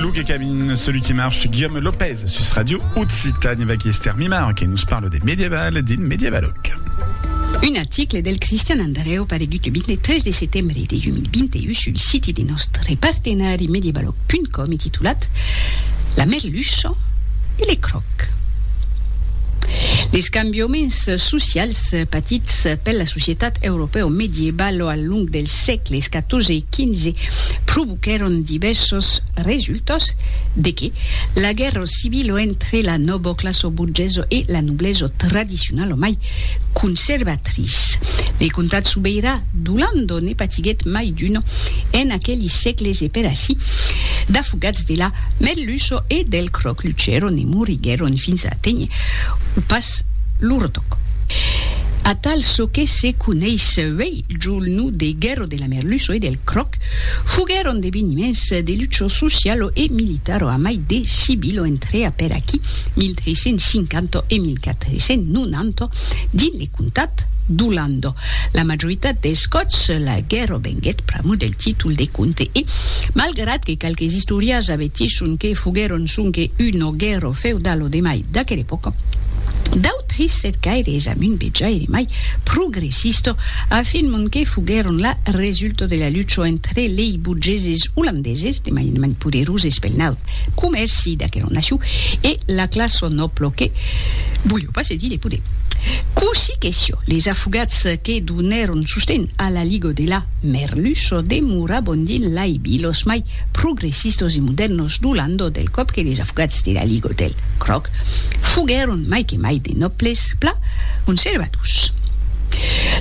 Luke Cabin, celui qui marche, Guillaume Lopez, sus Radio Occitanie, avec Esther Mimar, qui nous parle des médiévales, des médiévaloques. Un article del Cristian Andreu paregut le 23 de setembre de 2021 sul siti de nostre partenari medievaloc.com e titulat La merluça e le croc. Les cambiaments socials patits per la societat europèo medievalo al long del sègles XIV e XV provoquèron divèrsos resultats, de que la guèrra civila entre la noboclassa borgesa e la noblesa tradicionala mai conservatrice. Le comtat sobeirà d'Olanda ne patiguèt mai d'una en aqueli sègles e per ací d'afogats de la merluça e del cròc luchèron e moriguèron fins a aténher o pas lo retoc. Atal çò que se coneis uèi Julnu de Guerro de la Merluço e del Croc foguèron d'eveniments de lucho socialo e militaro a mai de civilo entre apèr aquí 1350 e 1490 dins le comtat d'Olando. La majoritat dels còps la guerro venguèt pr'amor del títol de comte e, malgrat que qualques istòrias avertisson que foguèron sonque una guerro feudalo de mai d'aquela epòca, Trissèt gaire es amunt de jaire mai progressista a fin mon que foguèron la resulta de la lucha entre lei burgeses olandeses de mai en mai poderoses pel naut comèrci d'aquera nacion e la classa nòbla que volèu pas cedir de poder. Cossí que siá, les afogats que donèron sosten a la liga de la Merluça demoravan dins lai vilas mai progressistos e modèrnos du landau del còp que les afogats de la Ligue del Cròc foguèron mai que mai de nòbles pla conservadors.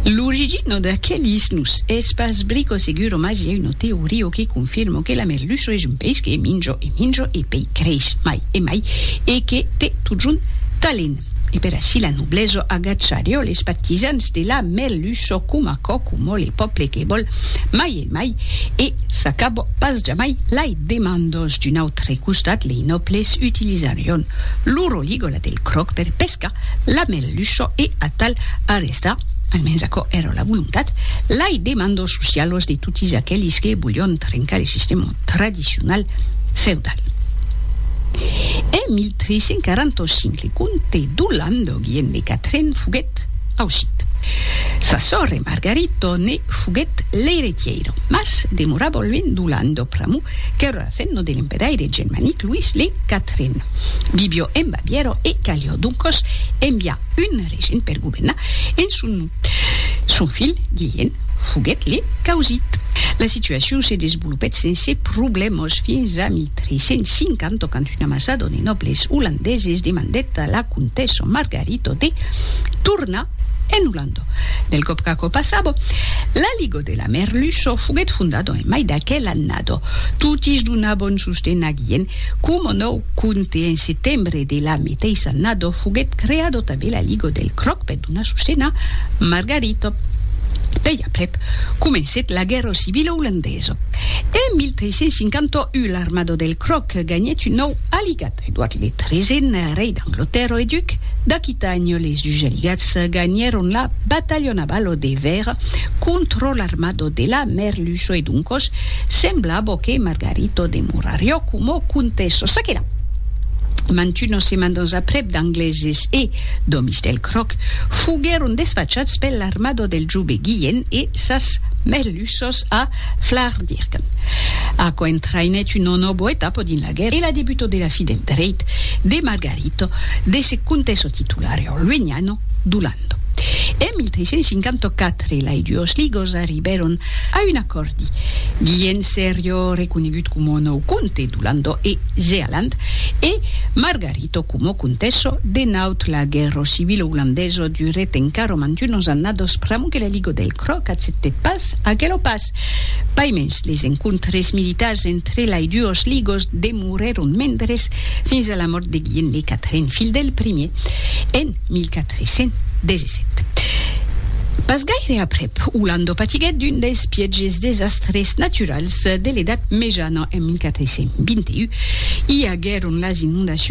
L'origina d'aquelis nos es pas brico seguro mas i a una teoria que confirma que la merluça es un peish que minja e minja e pei creish mai e mai e que te totjorn talent. E per ací la noblesa agacharió les partisans de la merluça coma còcomò le pòple que vòl mai e de mai, e s'acabò pas jamai lai demandos d'un autre costat lei nòbles utilizarion lo roligola del cròc per pescar la merluço e atal arrestar, almens aquò èra la volontat, lai demandos socialos de totis aquelis que volion trencar le sistèma tradicional feudal. En 1345 le comte d'Holland Guillem de Catren foguèt foguèt aucit. Sa sòrre Margarito ne foguèt l'eiretièira, mas demorava luènh do landò pr'amor qu'èra la femna de l'empedaire germanic Luís le Quatren. Vivió en Bavièra e calió doncòs enviar un regent per governar en son nom. Son filh Guilhèn foguèt le caussit. La situacion se desvolopèt sense problèmas fins a 1350 quand un ambasador de nòbles olandeses demandèt a la comtessa Margarita E toti, torna en Olanda. Del còp qu'aquò passava, la Liga de la Merluça foguèt fondada en mai d'aquela annada. Totis donabon sosten a Guillen coma nòu comte e en setembre de la meteissa annada foguèt creada tanben la Liga del Cròc per donar sosten a Margarita. Pei aprèp comencèt la guèrra civila olandesa. En 1351 l'armada del Cròc ganhèt un nòu aligat. Edward le Tresèn, rei d'Anglotèrra e duc d'Aquitània, les Jugeligats ganhèron la batalha navalo de Vèra contra l'armada de la Merluço e doncos semblava que Margarito demorariá coma comtessa. Ça que la, mantunas semandas aprèp d'Angleses e d'òmis del Cròc foguèron desfachats per l'armada del jove Guilhèn e sas Merluças a Flardirgan. Aquò entraïnèt una nòva etapa dins la. Laguerre e la debuto de la fi del dreit de Margarito de se contesso titulare orlueniano d'Olanda. En 1354 lai duos ligos arribèron a un acòrdi, Guilhèn Serio reconegut coma nòu comte d'Olanda e Zealand e Margarito coma contesso de Naut. La guèrra civila olandesa durèt encara mantunos annados pr'amor que la liga del Cròc accèptèt pas aquela paç. Italas. Paimens, les encontres militars entre lai duos ligos demorèron mendres fins a la mòrt de Guilhem le Quatren, filh del primier, en 1417. Pas gaire aprèp, Olando patiguèt d'un dels pièges desastres naturals de l'Edat Mejana en 1421. I aguèron las inondacions